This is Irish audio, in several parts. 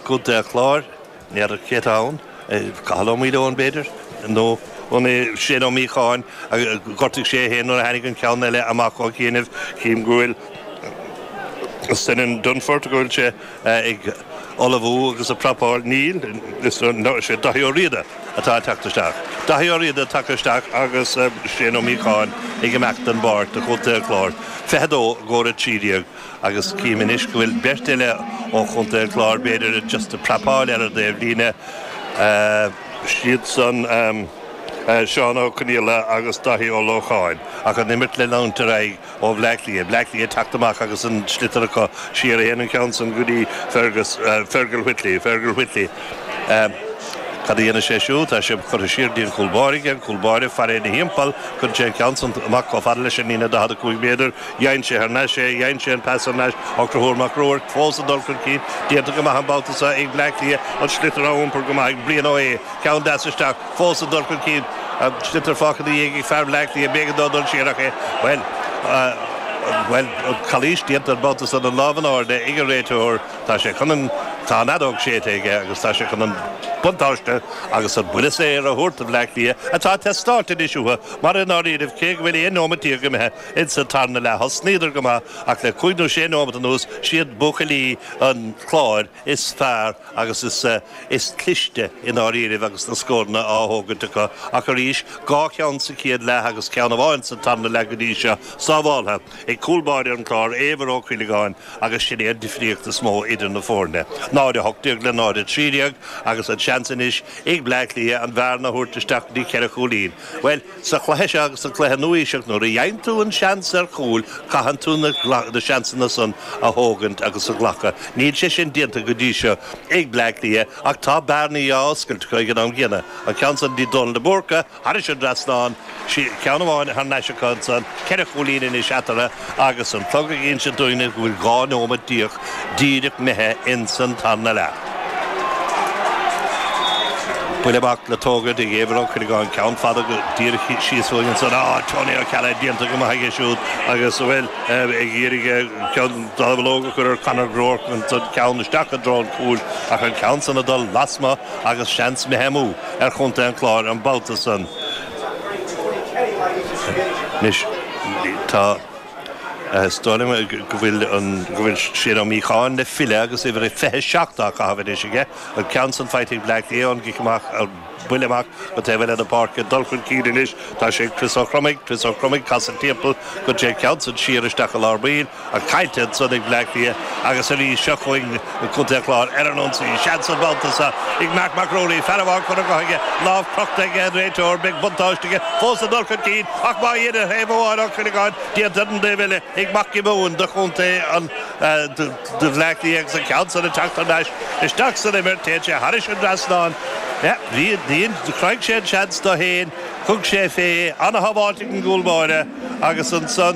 Contae an Chláir n'fheadar cé atá ann, Cathal Ó Maoileoin b'fhéidir, nó Shane Ó Míocháin, ghortaigh sé é féin nuair a tháinig an ceann eile amach ó chianaibh, chím go bhfuil Senan Dunford, go bhfuil sé ag ullmhú agus ag prapáil, níl, is é Daithí Ó Riada atá ag teacht isteach, Daithí Ó Riada tagtha isteach agus Shane Ó Míocháin ag imeacht den bpáirc do Chontae an Chláir 22 go 13. agus cím anois go bhfuil beirt eile ó Chontae an Chláir, b'fhéidir just ag prapáil ar an dtaobh líne, siadsan Seán Ó Conaola agus Dáithí Ó Lócháin, ach an imirt le leanúint ar aghaidh ó Bhleá Cliath. Bleá Cliath ag teacht amach agus an sliotar acu siar, a théann an ceann san go dtí Fergus, Fergal Whitley, Fergal Whitley, cad a dhéanfaidh sé siúd, tá sé curtha siar go dtí an cúl báire aige, an cúl báire ag faire ina thimpeall, cuireann sé an ceann san amach chomh fada leis an líne 45 méadar, Dhein sé thar n-ais é, dhein sé an pas thar n-ais. Conchubhar Mag Ruairc fós ag dul chun cinn. Déanta go maith an babhta seo ag Bleá Cliath. An sliotar á iompar go maith ag Brian Ó hAodha. Ceann deas isteach. Fós ag dul chun cinn. An sliotar fágtha ina dhiaidh ag fear Bhleá Cliath. B'éigean dó dul siar ach é. Bhuel. Bhuel, an chalaois déanta an babhta seo. An lámh in airde ag an réiteoir. Tá sé chun an. Tá an fheadóg séidte aige agus tá sé chun an buntáiste agus an buille saor a thabhairt do Bhleá Cliath atá ag teastáilt anois uathu mar i ndáiríribh, cé go bhfuil aon neomat déag imithe, Insa tarna leath thosnaíodar go maith ach le cúig nó sé nóimeat anuas siad buachaillí an Chláir is fearr agus is is cliste i ndáiríribh agus na scóranna á thógaint acu ach arís dhá cheann sa chéad leath agus ceann amháin sa tarna leath go dtí seo sábháltha ag cúl báire an Chláir, Éibhear Ó Cuileagáin agus sin é an difríocht is mó idir na foirne, 0, 18 le 0, 13 agus an seans anois ag Bleá Cliath an bhearna a thabhairt isteach go dtí ceithre chúilín. Bhuel. Sa chluiche seo agus sa chluiche nua-aoiseach, nuair a fhaigheann tú an seans ar chúil, caitheann tú na seansanna san a thógaint agus a ghlacadh. Níl sé sin déanta go dtí seo ag Bleá Cliath ach tá bearnaí á oscailt acu ag an am gcéanna. An ceann san de Dónal de Búrca thairis an dtrasnán, ceann amháin thar n-ais acu ansan, ceithre chúilín anois eatarthu. Agus an clog ag inse dúinne go bhfuil dhá neomat déag díreach imithe ins an tarna leath. Buille amach le tógaint ag Éibhear Ó Cuileagáin, ceann fada go díreach síos uainn ansan. Á, Tony Ó Ceallaigh déanta go maith aige siúd agus, bhuel, ag iarraidh an dallamullóg a chur ar Conor Groarke ansan, ceann isteach i dtreo an chúil ach an ceann san ag dul lasmuigh agus seans imithe amú ar chontae an Chláir an babhta san. Anois, tá, is dóigh liom go bhfuil, go bhfuil Shane Ó Míocháin le filleadh agus uimhir 27 á caitheamh anois aige, an ceann san faighte ag Bleá Cliath, an cic amach, an buille amach go taobh eile na páirce, ag dul chun cinn anois, tá sé ag Chris Ó Cromaigh, Chris Ó Cromaigh ag casadh timpeall go dtí an ceann san siar isteach i lár baill, Caillte ansan ag Bleá Cliath agus arís seo chugainn ag Contae an Chláir ar an ionsaí. Seans an babhta seo ag Mark Mac Ruairí. Fear amháin curtha dhe aige, lámh crochta aige an réiteoir. Beidh buntáiste aige fós ag dul chun cinn ach má dhéanann ar thaobh amháin Ó Cuileagáin, déanta ar an taobh eile ag Mac Giobúin do chontae an do Bhleá Cliath agus an ceann san ag teacht thar n-ais isteach san imirt. Téann sé tharis an dtrasnán. Chruthaigh sé an seans dó fhéin. Thug sé fé. Ana-shábháilt ag an gcúl báire. Agus ansan,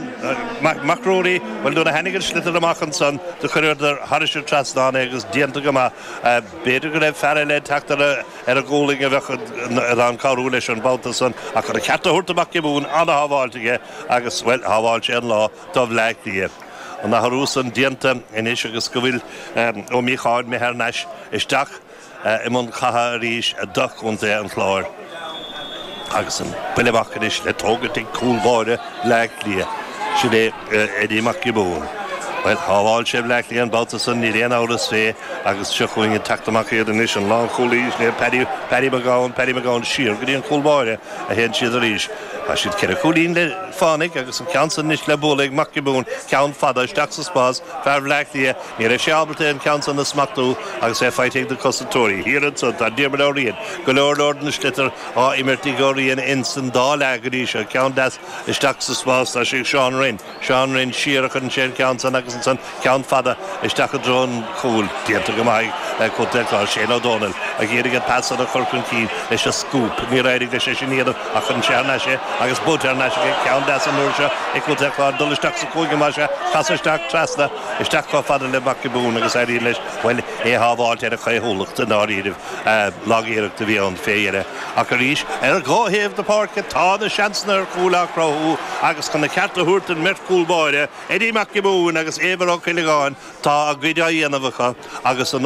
Mac Ruairí, bhuel, nuair a tháinig an sliotar amach ansan, do chuireadar thairis an trasnán é agus déanta go maith. B'fhéidir go raibh fear eile ag teacht ar a ghualainn a bheadh in ann cabhrú leis an babhta san ach chun a cheart a thabhairt do Mhac Giobúin, an-shábháilt aige agus, bhuel, shábháil sé an lá do Bhleá Cliath. An t-athrú san déanta anois agus go bhfuil Ó Míocháin imithe thar n-ais isteach, i mbun catha arís do Chontae an Chláir agus an buille amach anois le tógaint ag cúl báire Bhleá Cliath, sin é Eddie Mac Giobúin. Bhuel, shábháil sé Bleá Cliath an babhta san, níl aon amhras fé, agus seo chugainn ag teacht amach iad anois, an lánchúlaí, sin é Paddy, Paddy Mac Gabhann, Paddy Mac Gabhann, siar go dtí an cúl báire a théann siad arís. Tá siad ceithre chúilín le fánaidh agus an ceann san anois le bualadh ag Mac Giobúin, ceann fada, isteach sa spás, fear Bhleá Cliath, Ní raibh sé ábalta an ceann san a smachtú agus é faighte ag na cosantóirí. Thiar anso tá Diarmuid Ó Riain, go leor leor den sliotar á imirt ag Ó Riain ins an dá leath go dtí seo, ceann deas isteach sa spás, tá sé ag Seán Rynne, Seán Rynne siar a chuireann sé an ceann san agus ansan ceann fada isteach i dtreo an chúil, déanta go maith ag Contae an Chláir, Shane Ó Domhnaill ag iarraidh an pas san a chur chun cinn leis an scúp, níor éirigh leis é sin a dhéanamh ach chuireann sé thar n-ais é agus buailte thar n-ais aige, ceann deas an uair seo ag Contae an Chláir, dul isteach sa chúinne mar seo, casadh isteach trasna. isteach chomh fada le Mac Giobúin agus éiríonn leis, bhuel, é a shábháilt ar a chaothúlacht, i ndáiríribh, lag-iarracht a bhí ann fé dheireadh, ach arís, ar dhá thaobh na páirce tá na seansanna ar chúil á chruthú agus chun a cheart a thabhairt don mbeirt chúl báire, Eddie Mac Giobúin agus Éibhear Ó Cuileagáin, tá a gcuid á dhéanamh acu agus an